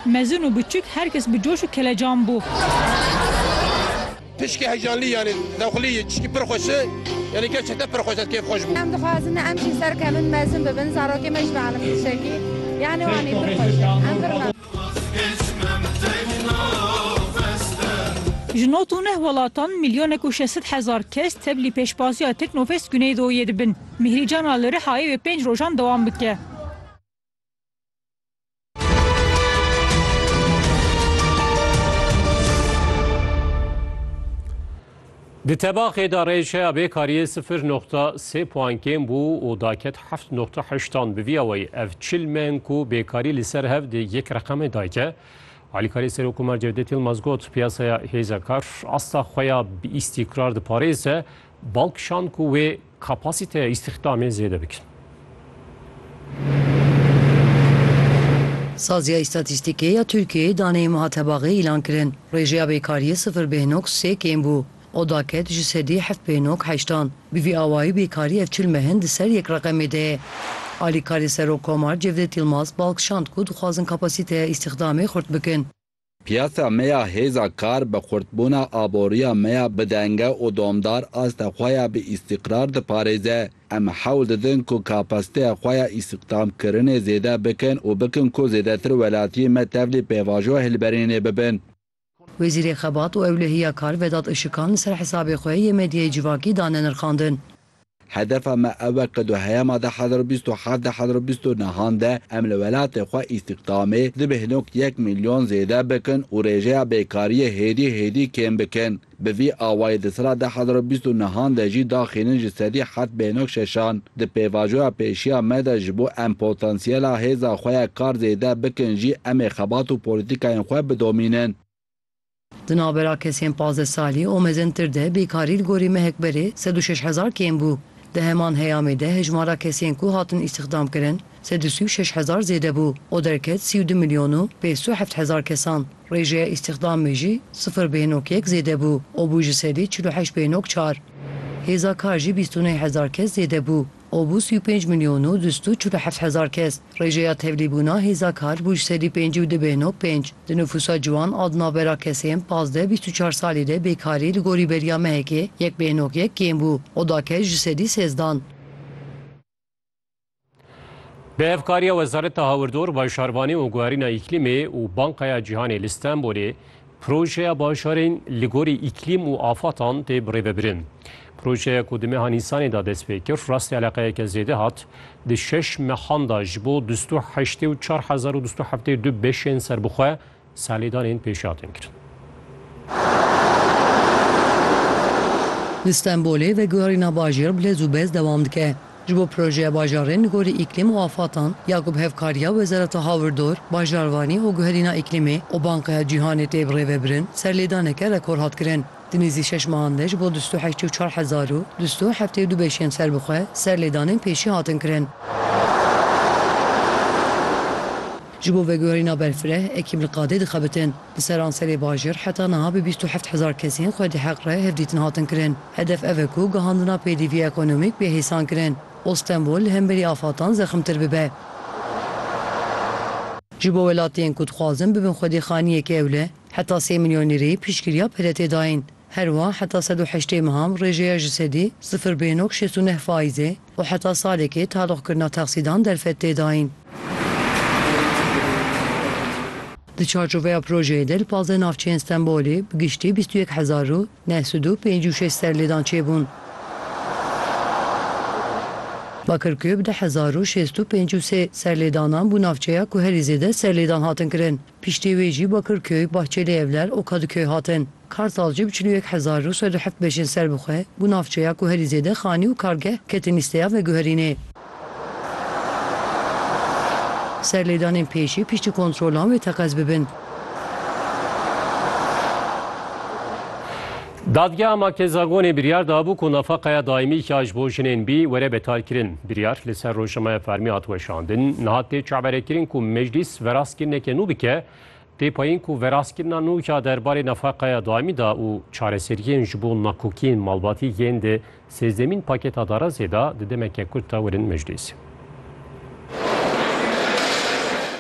Mezin û biçûk her kes bi coş û kelecan bû. Tişkî heyecanlî yanî dewxilî tişkî pir xweş e. Yanî gerçekten pir xweş e kêf xweş bû. Em dixwazin em jî serkevin mezin bibin zarokê me ji bo elimî tişekî yanî wanî pir xweş e. Em pir mem. Ji nod û neh welatan milyonek û şeşsed hezar kes teblî pêşbaziya Teknofest Güneydoyê dibin. Mîhrîcana li Rihayê wê pênc rojan dewam bike. Di tebaxê de rêjeya bêkariyê sifir noxta sê puan kêm bû û daket heft noxta heştan bi vî awayî ev çil meng ku bêkarî li ser hev di yek reqemê dayke. Alîkarê Serokkomar Cevdet Yilmaz got piyasaya hêza kar asta xwe ya bi îstîkrar diparêze bal kişand ku wê Kapasîteya îstîxdamê zêde bikin. Saziya Îstatîstîkê ya Tirkiyeyê daneyên wiha tebaxê îlan kirin, Rêjeya bêkariyê sifir bêhnok sê kêm bû, oda ket ji sedî heft bêhnok heştan. Bi vî awayî bêkarî ev çil mehin di ser yek reqemê de ye. Alîkarê Serokkomar Cevdet Yilmaz bal kişand ku dixwazin kapasîteya îstîxdamê xurt bikin. Piyasa me ya hêza kar bi xurtbûna aboriya me ya bidenge û domdar asta xwe ya bi îstîqrar diparêze. Em hewl didin ku kapasiteya xwe ya îstihdamkirinê zêde bikin û bikin ku zêdetir welatiyên me tevlî pêvajoya hilberînê bibin. Wezîrê Xebat û Ewlehiya Kar Vedat Işikan li ser hesabê xwe yê medyayê civakî dane nirxandin. Hedefa me ew e ku di heyama deh hezar û bîst û heft deh hezar û bîst û nihan de em li welatê xwe îstîxdamê di bêhnok yek mîlyon zêde bikin û rêjeya bêkariyê hêdî hêdî kêm bikin. Bi vî awayî di sala deh hezar û bîst û nihan de jî daxînin ji sedî heft bêhnok şeşan. Di pêvajoya pêşiya me de ji bo em potansiyela hêza xwe ya kar zêde bikin jî em ê xebat û polîtîkayên xwe bidomînin. Di navbera kesên pazdeh salî û mezintir de bêkarî li gorî mehek berê sed û şeş hezar kêm bû. Di heman heyamê de hejmara kesên ku hatin îstîxdamkirin sed û sî û şeş hezar zêde bû û derket sî û du milyon û pênc sed û heft hezar kesan. Rêjeya îstîxdamê jî sifir bêhnok yek zêde bû û bû ji sedî çil û heşt bêhnok çar. Hêza kar jî bîst û neh hezar kes zêde bû û bû sî û pênc milyon û du sed û çil û heft hezar kes. Rêjeya tevlîbûna hêza kar bû ji sedî pêncî û du bêhno pênc. Di nifûsa ciwan a di navbera kesên pazdeh bîst û çar salî de bêkarî li gorî beriya mehekê yek bêhnok yek kêm bû û da kes ji sedî sêzdan. Bi hevkariya Wezareta Hawirdor, Bajarbanê û Guherîna Îklîmê û Banka ya Cîhanê li Stenbolê, Projeya Bajarên li gorî îklîm û afatan tê birêvebirin. Projeya ku di meha Nîsanê de dest pê kir, rastî eleqeyeke zêde hat, di şeş mehan de ji bo du sed û heştê û çar hezar û du sed û heftê û du beşên serbixwe salêdanên pêşî hatin kirin. Li Stenbolê veguherîna bajêr bi lez û bez dewam dike. Ji bo projeya bajarên li gorî îklîm û afatan ya ku bi hevkariya Wezareta Hawirdor, Bajarvanî û Guherîna Îklîmê û Bankeya Cîhanê tê birêvebirin, serlêdaneke rekor hat kirin. Di nêzî şeş mehan de ji bo du sed û heştê û çar hezar û du sed û heftê û du beşiyên serbixwe serlêdanên pêşî hatin kirin. Ji bo veguherîna berfireh, ekîb li qadê dixebitin. Li seranserê bajir heta niha bi bîst û heft hezar kesên xwedî heq re hevdîtin hatin kirin. Hedef ev e ku gihandina pêdivî ekonomîk bê hêsankirin û Stenbol li hemberî afatan zexmtir bibe. Ji bo welatiyên ku dixwazin bibin xwedî xaniyeke ewle, heta sê milyon lîreyê piştgiriya PDT'ê dayîn. Herwiha heta sed û heştê meham rêjeya ji sedî sifir bê nokte şêst û neh faîzê, û heta salekê taloqkirina texsîdan derfet tê dayîn. Di çarçoveya projeyê de li pazdeh navçeyên Stenbolê bi giştî bîst û yek hezar û neh sed û pêncî û şeş serlêdan çêbûn. Bakirkuye bi deh hezar û şêst û pêncî û sê serlêdanan bû navçeya ku herî zêde serlêdan hatin kirin. Piştî wê jî Bakirköy, Bahçeli Evler û Kadıköy hatin. Kartal jî bi çil û yek hezar û sed û heft beşên ser bi xwe ku navçeya ku herî zêde xanî û kargeh ketin lîsteya veguherînê. Serlêdanên pêşî piştî kontrolan wê teqez bibin. Dadgeha Makezagonê biryar dabû ku nafaqeya daîmî ya ji bo jinên bî were betalkirin. Biryar li ser rojnameya fermî hat weşandin. Niha tê çaverekirin ku Meclîs verastkirineke nû bike. Tê payîn ku verastkirina nû ya der barê nafaqeya daîmî de û çareseriyên ji bo nakokiyên malbatî yên di sêzdemîn paketa darazê de di demeke kurt de werin meclîs.